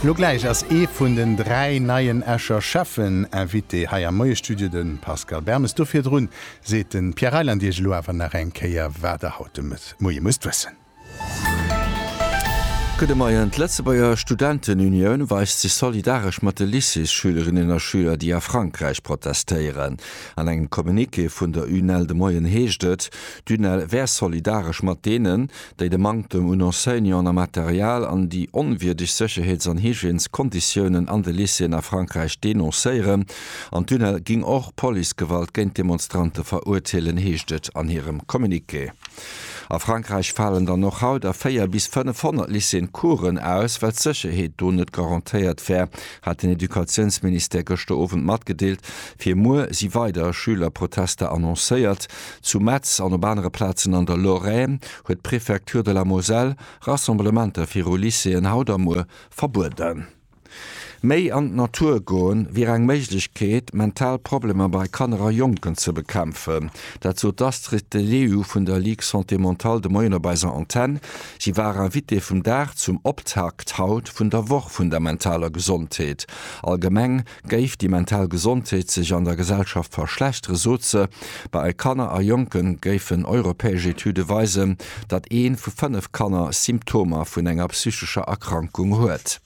Lo gläich ass ee vun den dräi neien Escher Schäffen Invité hei am Moiestudio, de Pascal Bermes. Do virdrun seet de Pierre Reyland Iech elo awer nach eng Kéier, wat Der haut de Moie musst wëssen. Gudde Moien. D'Lëtzebuerger Studentenunioun weist sech solidaresch mat de Lycéesschülerinnen a schüler, déi a Frankräich protestéieren. An engem Communiqué vun der UNEL de Moien heescht et, d'UNEL wär solidaresch mat deenen, déi de Manktem un Enseignanten a Material an déi onwierdeg Sécherheets an Hygièneskonditiounen an de Lycéeën a Frankräich denoncéieren an d'UNEL géing och Policegewalt géint d'Demonstrante verurteelen, heescht et an hirem Communiqué. A Frankräich falen dann och haut a 4 bis 500 Lycéeën Coursen aus, well d'Sécherheet do net garantéiert wär, hat den Educatiounsministère gëschter Owend matgedeelt. Fir muer si weider Schülerprotester annoncéiert. Zu Metz an op anere Plazen an der Lorraine huet d'Préfecture de la Moselle Rassemblementer viru Lycéeën haut a muer verbueden. Méi an d'Natur goen, wier eng Méiglechkeet, mental Problemer bei Kanner a Jonken ze bekämpfen. Dat sot d'Astrid De Leeuw vun der Ligue Santé Mentale de Moien op eiser Antenn. Si war Invitée vum Dag zum Optakt haut vun der Woch vun der mentaler Gesondheet allgemeng. Géif déi mental Gesondheet sech an der Gesellschaft verschlechtere, sot se, bei Kanner a Jonke géifen europäesch Etüde weisen, datt ee vu fënnef Kanner Symptomer vun enger psychescher Erkrankung huet.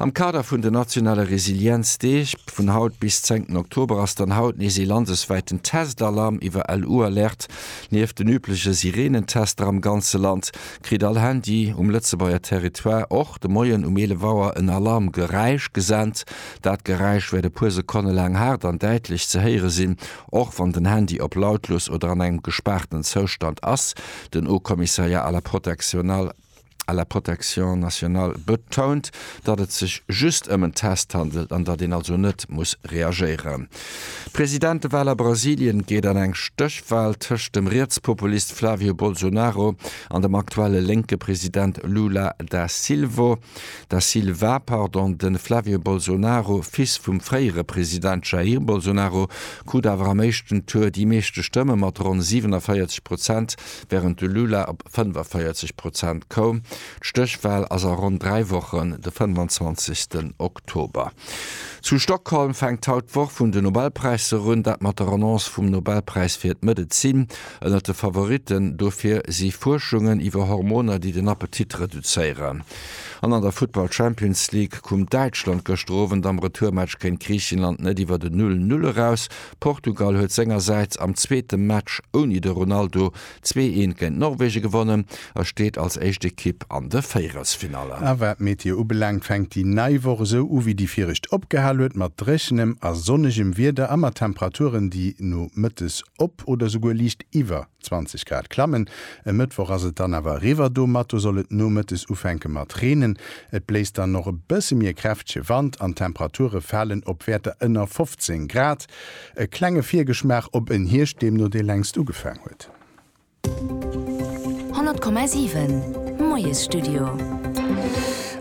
Am Kader vun den nationale Resilienzdeeg, vun haut bis 10 Oktober, ass dann haut nees ee landeswäiten Test-Alarm iwwer LU-Alerte. Nieft den übleche Sireenentester am ganze Land, kritt all Handy um Lëtzebuerger Territoire och de Moien um 11 Auer en Alarmgeräisch gesent. Dat Geräisch wäert e puer Sekonne laang haart an däitlech ze héiere sinn, och wann den Handy op lautlos oder an engem gespaarten Zoustand ass, den Haut-Commissariat à la protection à la protection nationale betount, datt et sech just ëm en Test handelt an datt een also net muss reagéieren. D'Presidentewahl a Brasilien geet an eng Stéchwahl tëscht dem Rietspopulist Flavio Bolsonaro an dem aktuelle lénke President Lula da Silvo da Silva, pardon. De Flavio Bolsonaro, Fils vum fréiere President Jair Bolsonaro, krut awer am éischten Tour déi meeschte Stëmme mat ronn 47 Prozent, wärend de Lula op 45 Prozent koum. D'Stéchwal ass a ronn dräi Wochen, de 25. Oktober. Zu Stockholm fänkt haut d'Woch vun de Nobelpräisser un, dat mat der Annonce vum Nobelpräis fir d'Medezin. Ënnert de Favoritten dofir si Fuerschungen iwwer Hormoner, déi den Appetit reduzéieren. An an der Futtball Champions League koum Däitschland gëschter Owend am Retourmatch géint Griichenland net iwwer den Null-Null eraus. Portugal huet sengersäits am zweete Match ouni de Ronaldo Zwee een géint Norwegen gewonnen a steet als éischt Ekipp an de Véierelsfinalle. A wat d'Meteo ubelaangt, fänkt déi nei Woch esou u wéi déi viregt opgehal huet, mat dréchenem a sonnegem Wieder a mat Temperaturen, déi nomëttes op oder souguer liicht iwwer 20 Grad klammen. E Mëttwoch ass et dann awer eriwwer, domatter soll et nomëttes ufänke mat reenen. Et bléist dann och e bësse méi e kräftege Wand an d'Temperature falen op Wäerter ënner 15 Grad. E klenge Virgeschmaach op en Hierscht, deem no dee längst ugefaang huet. 100,7 Moiesstudio.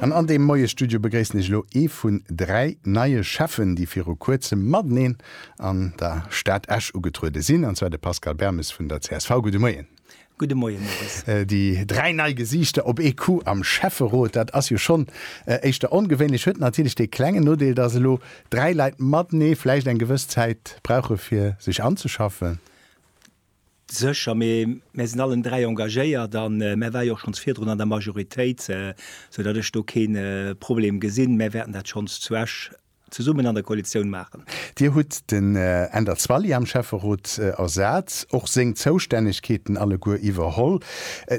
An an deem Moiesstudio begréissen ech elo ee vun dräi neie Schäffen, déi viru Kuerzem mateneen an der Stad Esch ugetruede sinn, an zwar de Pascal Bermes vun der csv. Gudde Moien. Gudde Moien, Maurice. Déi dräi nei Gesiichter op ee Coup am Schäfferot, dat ass jo schonn éischter ongewéinlech. Huet natierlech dee klengen Nodeel, datt elo dräi Leit matenee vläicht eng gewëss Zäit brauche fir sech anzeschaffen. Sécher, mee mär sinn allen dräi engagéiert a mär ware jo och schonns virdrun an der Majoritéit, esou datt ech do kee Problem gesinn. Mär wäerten dat schonns zu Esch zesummen an der Koalitioun maachen. Dir hutt den Änder Zwally am Schäfferot ersat, och seng Zoustännegkeeten alleguer iwwerholl.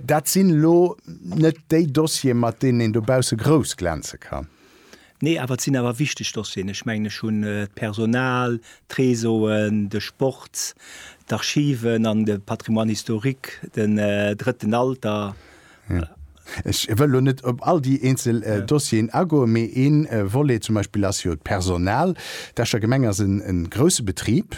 Dat sinn elo net déi Dossiere mat deenen een dobausse grouss glänze kann. Nee, awer et sinn awer wichteg Dossieren. Ech mengen ech hunn d'Personal, d'Réseauen, de Sport, d'Archiven an de Patrimoine historique, den drëtten Alter. Ja. Ech wëll lo net op all déi eenzel äh, Dossieren agoen, mee een äh, Volet zum Beispill ass jo d'Personal. D'Escher Gemeng ass en, en grousse Betrib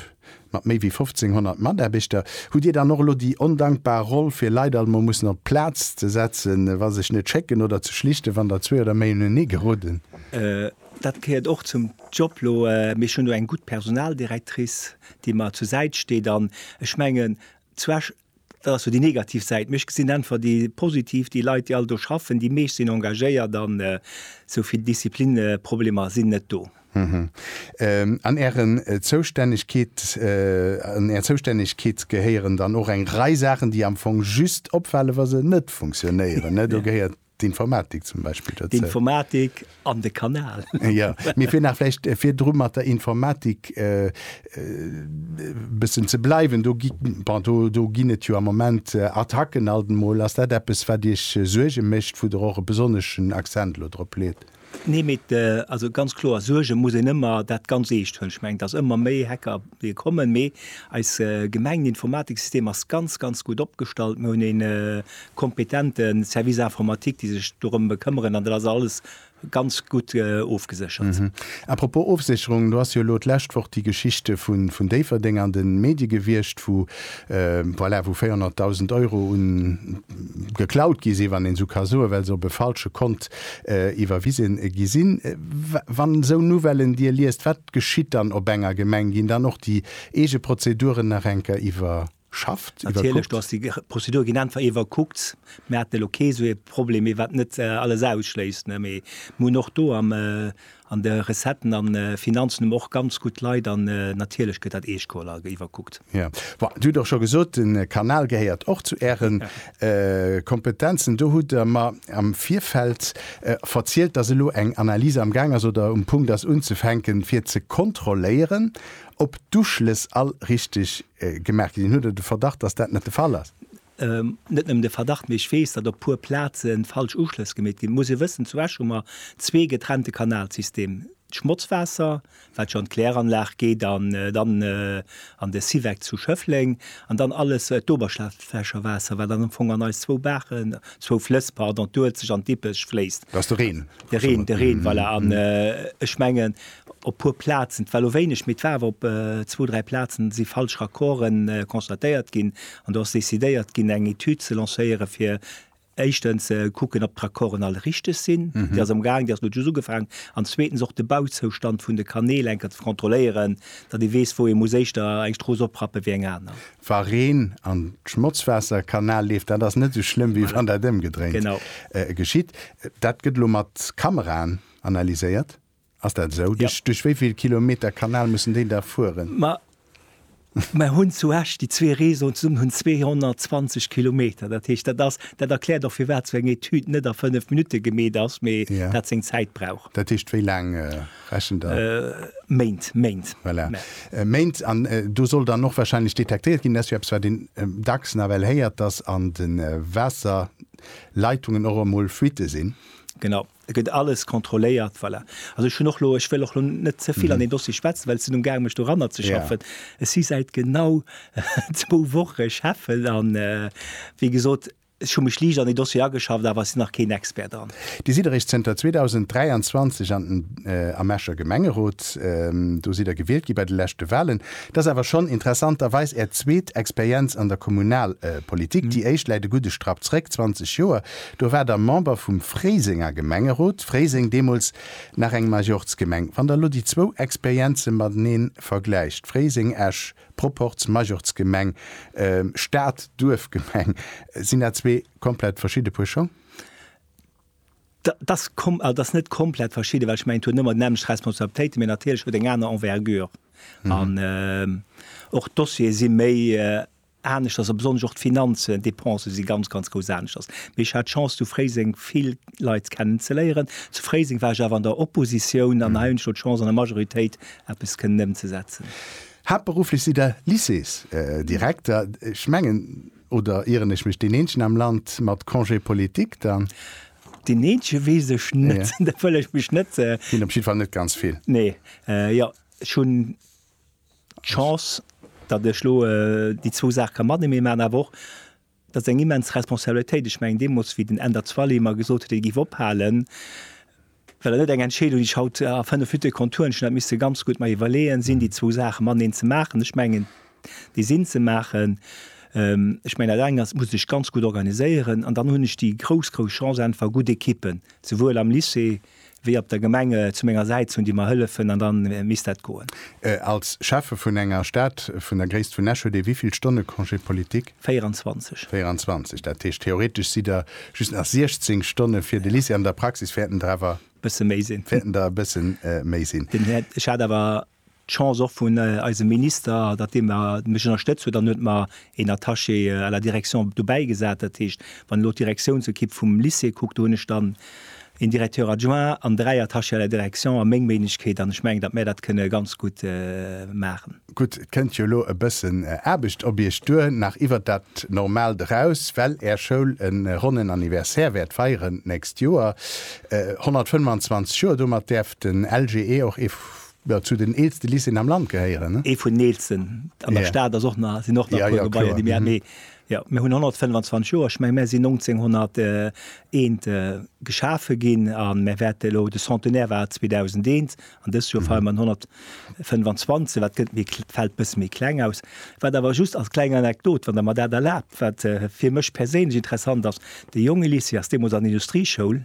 mat méi wéi 1.500 Mataarbechter. Hutt Dir dann och elo déi ondankbar Roll, fir Leit alt emol mussen op d'Plaz ze setzen, wa sech net schécken, oder ze schlichten, wann der zwee oder méi unenee geroden? Äh, dat gehéiert och zum Job lo, äh, mee ech hunn do eng gutt Personaldirectrice, déi mer zur Säit steet, an ech mengen, zu Esch, Dat ass sou déi negativ Säit, mee ech gesinn äntwert déi positiv, déi Leit, déi all do schaffen, déi meescht sinn engagéiert an sou vill Disziplinneproblemer sinn net do. An Är Zoustännegkeet gehéieren dann och eng Rei Saachen, déi am Fong just opfale wa se net funktionéieren, do gehéiert D'Informatik zum Beispill dozou. D'Informatik an de Kanal. Jo, mee fir nach vläicht virdru mat der Informatik e bëssen ze bleiwen, do gi, bon, do, do ginn et jo am Moment Attacken alt emol. Ass dat eppes, wat Iech Suerge mécht, wou Der och e besonneschen Accent elo drop leet? Nee, mee et, also ganz kloer, Suerge muss een ëmmer dat ganz Eescht hunn. Ech mengen, dass ëmmer méi Hacker wéie kommen, mee eis Gemengeninformatiksystem ass ganz, ganz gutt opgestallt. Mir hunn ee kompetente Service informatique, déi sech dorëm bekëmmeren an dat ass alles ganz gutt ofgeséchert. A propos Ofsécherung, do ass jo elo d'lescht Woch déi Geschichte vun Déifferdeng an de Medie gewiescht, wou, voilà, wou 400.000 Euro un geklaut gi sinn, wann een esou ka soen, well se op e falsche Kont iwwerwise gi sinn. Wann esou Nouvellen Dir liest, wat geschitt dann op enger Gemeng? Ginn dann och déi eege Prozeduren nach eng Kéier iwwerschafft, iwwerkuckt? Natierlech, do ass déi Prozedure ginn einfach iwwerkuckt. Mir haten elo kee sou ee Problem méi, wat net alles ausschléisst, ne, mee mir hunn och do am An de Recetten an Finanzen hu mer och ganz gutt Leit an natierlech gëtt dat Eeschkoll a iwwerkuckt. Jo, bon, dir hutt och scho gesot, de Kanal gehéiert och zu Äre Kompetenzen. Do hutt Der mer am Virfeld verzielt, dass elo eng Analyse am Gaang ass oder um Punkt ass unzefänken, fir ze kontrolléieren, ob d'Uschlëss all richtig gemaach ginn. Hutt Der de Verdacht, dass dat net de Fall ass? Net nëmmen de Verdacht, mee ech weess, datt op puer Plaze falsch Uschlëss gemeet ginn. Et muss ee wëssen, zu Esch hu mer zwee getrennte Kanalsystem, d'Schmotzwaasser, wat jo an d'Kläranlag geet an dann an de Syvec zu Schëffleng, an dann alles d'Oberschlaflächerwaasser, wat dann am Fong an eis zwou Baachen, zwou Flëss, pardon, d'Uelzecht an d'Dippech, fléisst. Dat ass de Reen. De Reen, de Reen, voilà. An ech mengen, Op puer Plazen, et war elo wéineg, mee et war awer op zwou, dräi Plazen si falsch Raccorde constatéiert ginn an do ass decidéiert ginn eng Etüd ze lancéiere fir éischtens ze kucken, ob d'Raccorden all richteg sinn, déi ass am gaang, déi ass elo just ugefaangen, an zweetens och de Bauzoustand vun de Kanäl eng Kéier ze kontrolléieren, datt ee weess, wou ee muss éischter eng Strooss oprappen, wéi eng aner. Wa Reen an d'Schmotzwaasser Kanal leeft, dat ass net esou schlëmm, wéi wann dat ëmgedréint geschitt. Dat gëtt elo mat Kameraen analyséiert. Ass dat esou? Ja. Duerch wéi vill Kilometer Kanal mussen déi da fueren? Ma mer hunn zu Esch déi zwee Réseauen zesummen hunn 220 Kilometer. Dat heescht, dat ass, dat erkläert och firwat esou eng Etüd net a fënnef Minutte gemeet ass, mee Ja. dat seng Zäit brauch. Dat heescht, wéi laang äh, rechent Der? Méint, Méint. Voilà. Mä Äh, Méint. An äh, do soll dann och wahrscheinlech detektéiert ginn, dat ass jo eppes, wat een äh, dacks nawell héiert, dass an de äh, Waasserleitungen och emol Fuitte sinn. Genau. Et gëtt alles kontrolléiert, voilà. Also ech hunn och elo, ech wëll och elo net ze vill an deen Dossier schwätzen, well ech sinn umgaangen, mech doranner ze schaffen. Ech si säit genau zwou Woche Chef an wéi gesot, ech hu mech liicht an dee Dossier ageschafft, awer ech sinn nach keen Expert dran. Dir sidd eréischt zënter 2023 an den, am Escher Gemengerot. Do sidd Der gewielt gi bei de leschte Wahlen. Et ass awer schonn interessanterweis Är zweet Experienz an der Kommunalpolitik. Déi éischt läit e gudde Strapp zréck, 20 Joer. Do war der Member vum Fréisenger Gemengerot, Fréiseng deemools nach eng Majorzgemeng, wann der lo déi zwou Experienze mateneen vergläicht, Fréiseng, Esch, Proporz Majorzgemeng, Stad, Duerfgemeng, sinn dat zwee komplett verschidde Puer Schong? Dat ass kom, dat ass net komplett verschidde, well ech mengen et huet net emmer déi nämmlecht Responsabilitéiten, mee natierlech huet eng aner Envergure an och d'Dossiere si méi aneschters a besonnesch och d'Finanzen, d'Dépensë si ganz, ganz grouss aneschters. Mee ech hat d'Chance zu Fréiseng vill Leit kennen ze léieren. Zu Fréiseng war ech awer an der Oppositioun an hei hunn ech elo d'Chance an der Majoritéit eppes kënnen ëmzesetzen. Haaptberufflech sidd Der Lycéesdirekter, ech mengen, oder ieren ech mech, deen eenzegen am Land mat Congé politique dann? Deen eenzege weess ech net, da wëll ech mech net. Sinn op jiddwer Fall net ganz vill. Nee, jo, ech hunn. d'Chance, datt ech elo déi zwou Saache ka matenee maachen, awer och, dat ass eng immens Responsabilitéit. Ech mengen deemools, wéi den Änder Zwally mer gesot huet, hie géif ophalen, war dat net eng Entscheedung, déi ech haut a fënnef Minutte konnt huelen. Ech hunn dat misse ganz gutt mer iwwerleeën, sinn déi zwou Saache mateneen ze maachen? Ech mengen, déi sinn ze maachen. Ech mengen, dat eng ass, et muss ee sech ganz gutt organiséieren. An dann hunn ech déi grouss, grouss Chance, einfach gutt Ekippen, souwuel am Lycée, wéi op der Gemeng zu menger Säit hunn, déi mer hëllefen, an da misst dat goen. Als Schäffe vun enger Stad vun der Gréisst vun Esch huet ee wéi vill Stonne Congé politique? 24. 24, dat heescht theoretesch sidd Der just nach 16 Stonne fir de Lycée. An der Praxis wäerten Der awer. Bësse méi sinn. Wäerten Der e bësse méi sinn. Ech hat awer D'Chance och vun eisem Minister, datt dee mech ënnerstëtzt huet, dann huet mer een Attaché à la direction dobäi gesat. Dat heescht, wann elo d'Direktiounsequipe vum Lycée kuckt, do hunn ech dann een Directeur adjoint an dräi Attachés à la direction a meng Méiglechkeet an ech mengen, datt mär dat kënne ganz gutt maachen. Gutt, et kënnt jo elo e bëssen Aarbecht op Iech duer, nach iwwert dat Normaalt eraus, well Är Schoul e ronnen Anniversaire wäert feieren d'nächst Joer, 125 Joer. Domat däerf den LGE och ee jo zu den eelste Lycéeën am Land gehéieren. Ee vun den eelsten an der Stad ass och nach, sinn och nach e puer Gebaier déi mir haten, mee jo mir hunn 125 Joer, ech menge mär sinn 1901 geschafe ginn a mär wäerte elo, de Centenaire war 2001 an dëst Joer feiere mer den 125, wat gëtt méi, fält e bësse méi kleng aus. Wat awer just als kleng Anekdot, wann Der mer dat erlaabt, wat fir mech perséinlech interessant ass, de Jongelycée ass deemools an Industrieschoul,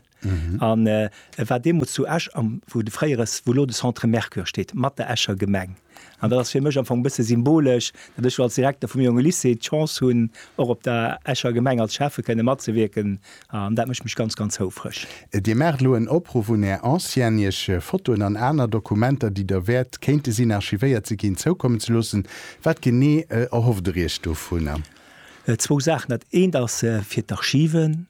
An e war deemools zu Esch, am, wou de fréiere, wou elo de Centre Mercure steet, mat der Escher Gemeng. An dat ass fir mech am Fong e bësse symbolesch, datt ech elo als Direkter vum jonge Lycée d'Chance hunn, och op der Escher Gemeng als Schäffe kënne matzewierken. An dat mécht mech ganz, ganz houfreg. Dir maacht elo en Opruff un Är Ancienne, Iech Fotoen an aner Dokumenter, déi Der wäert kéinte sinn, archivéiert ze ginn, zoukommen ze loossen. Wat genee erhofft Der Iech dovunner? Zwou Saachen. Dat eent ass fir d'Archiven.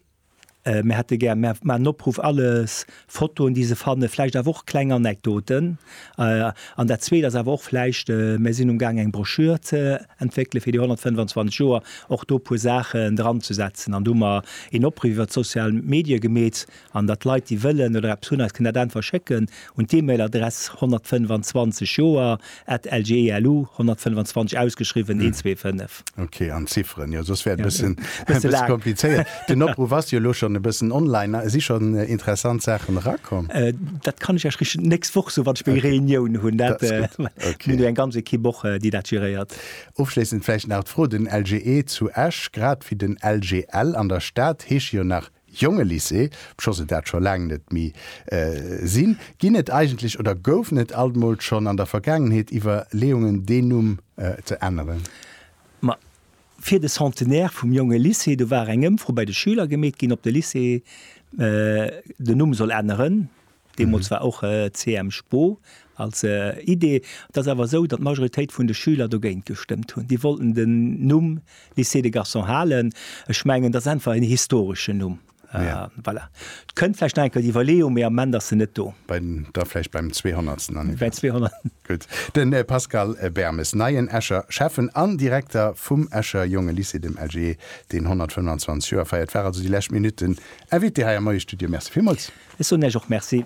Mir hätte gär, mir maachen en Opruff, alles Fotoen, déi se fannen, vläicht awer och kleng Anekdoten. An dat Zweet ass awer och vläicht, mir sinn um Gaang eng Broschür ze entwéckele fir déi 125 Joer, och do e puer Saachen dranzesetzen. An do hu mer een Opruff iwwert d'sozial Medie gemeet, an datt Leit, déi wëllen oder eppes hunn, eis kënnen dat einfach schécken. un d'E-Mail Adress 125 Joer at lgelu 125 ausgeschriwwen 125. Ok, an Zifferen, jo soss wär et e bëssen komplizéiert. Den Opruff ass jo elo schonn e bëssen online. Si schonn interessant Saachen erakomm? Dat kann ech Iech richteg d'nächst Woch soen, wann ech meng Reunioun hunn. Mir hunn jo eng ganz Ekipp och, déi dat geréiert. Ofschléissend vläicht nach d'Fro, Den LGE zu Esch, grad wéi den LGL an der Stad, heesche jo nach Jongelycée, obscho se dat scho laang net méi sinn, ginn et eigentlech oder goufen et alt emol schonn an der Vergaangenheet Iwwerleeungen, deen Numm ze änneren? Ma fir de Centenaire vum Jongelycée, do war eng Ëmfro bei de Schüler gemeet ginn, ob de Lycée den Numm soll änneren. Deemools war och CM Spo als Idee. Et ass awer esou, datt d'Majoritéit vun de Schüler dogéint gestëmmt hunn. Déi wollten den Numm Lycée des Garçons halen. Ech mengen, dat ass einfach en historeschen Numm. Voilà. Et kënnt vläicht nach eng Kéier déi Iwwerleeung, mee am Moment ass se net do. Da vläicht beim zweehonnertsten Anniversaire. Gutt. De Pascal Bermes, neien Escher Schäffen an Direkter vum Escher Jonge Lycée, dem LJE, deen 125 Joer feiert, war also déi lescht Minutten Invité hei am neie Studio. Merci villmools. Ech soen Iech och Merci.